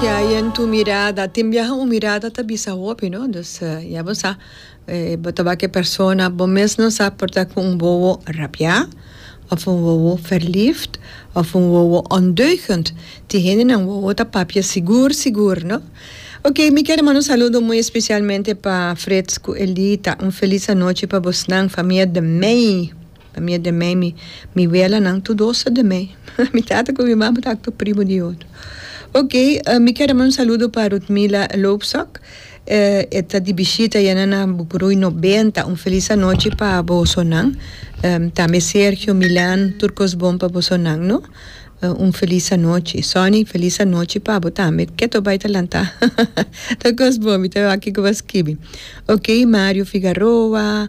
Ke hay en tu mirada, tin biaha un mirada ta bisa hopi no, dus ya bo sa bo ta bak e persona bo mes no sa por ta ku un wowo rabiá òf un wowo verliefd òf un wowo ondeugend, tin hendenan wowo ta papia sigur sigur no. Oke mi kier a manda un saludo muy especialmente pa Frits ku Elita, un felis anochi pa bosnan famia de Mey. Pa mia de mei mi mi welanan tu dosa de mei mi tata cu mi mama tacu tu primo di oto ok mi kier a manda un saludo pa Rudmila Loopsok e ta di bishita ya na na Bucuruy noventa un feliz anochi pa bosonan tambe Sergio Milan tur cos bon pa bosonan no un feliz anochi Sonny feliz anochi pa bo tambe ke to bay ta lanta tur cos bon mi ta wak kico bo a skibi ok Mario Figaroa.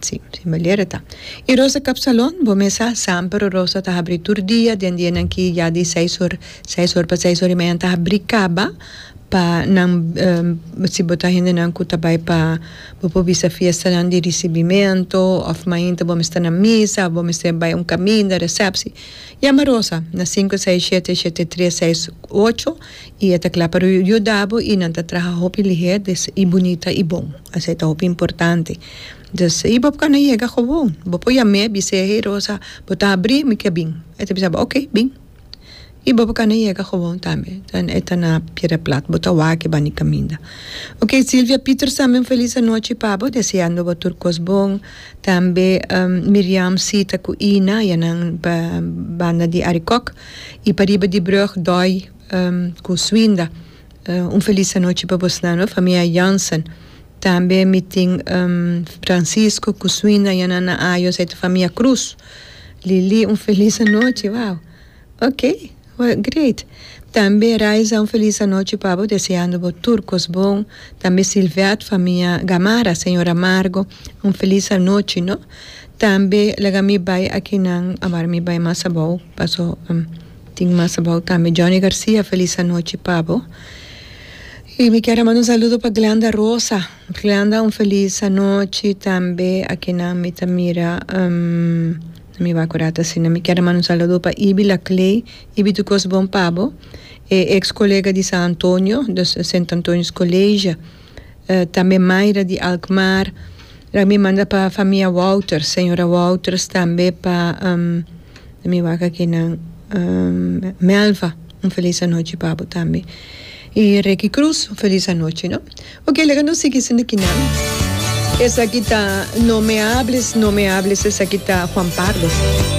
Sí, sí, Meliere ta. I Rosa Kapsalon, bo mesa? Samper Rosa ta habri tur dia, den dianan ki ya di seis or, seis or pa seis or i media nan ta habri kaba pa nan si bo ta hendenan ku ta bai pa bo por bisa fiestanan di risibimento òf mainta bo mester na misa òf bo mester bai un kaminda, resèpsi. Yama Rosa na sinku seis shete, shete tres seis ocho. I e ta kla pa yuda bo, i nan ta traha hopi lihé, dus i bunita i bon. Asei ta hopi importante. Dus i bo por kanda yega gewoon. Bo por yam'é, bis'é, Hey Rosa, bo ta habrí, mi ke bin. E ta bisa bo, Ok, bin. I bo por kanda yega gewoon tambe. Den e ta na pie de plat, bo ta wak bani kaminda. Ok, Silvia Pieters tambe un felis anochi pa bo, deseando bo tur kos bon. Tambe Miriam Sita ku Ina, ya nan banda di Arikòk. Y pa riba di brug doi cu suinda. Un feliz anochi pa bosnan no famia Jansen. Tambe mi tin Francisco cu suinda y nan na ayo esey ta famia Cruz. Lili un feliz anochi wao ok great. Tambe Raiza un feliz anochi pa bo deseando bo tur cos bon. Tambe Silvet famia Gamarra señor Amargo un feliz anochi no. Tambe laga mi bai akinan a wara mi bai mas abou paso tin mas abou tambe Johnny Garcia felis anochi pa bo y mi kier a manda un saludo pa Glenda Rosa Glenda un felis anochi tambe akinan mi ta mira no mi wak kuda ta asina mi kier a manda un saludo pa Ibi Laclay Ibi tur kos bon pa bo e ex colega di San Antonio di Sint Antonius College. tambe Mayra di Alkmaar, la mi manda pa famia Wouters, señora Wouters tambe pa let me wak aki nan Melva un felis anochi pa bo tambe y Reky Cruz un felis anochi no ok laga nos sigui sinda aki nan esaki ta no me hables no me hables esaki ta Juan Pardo.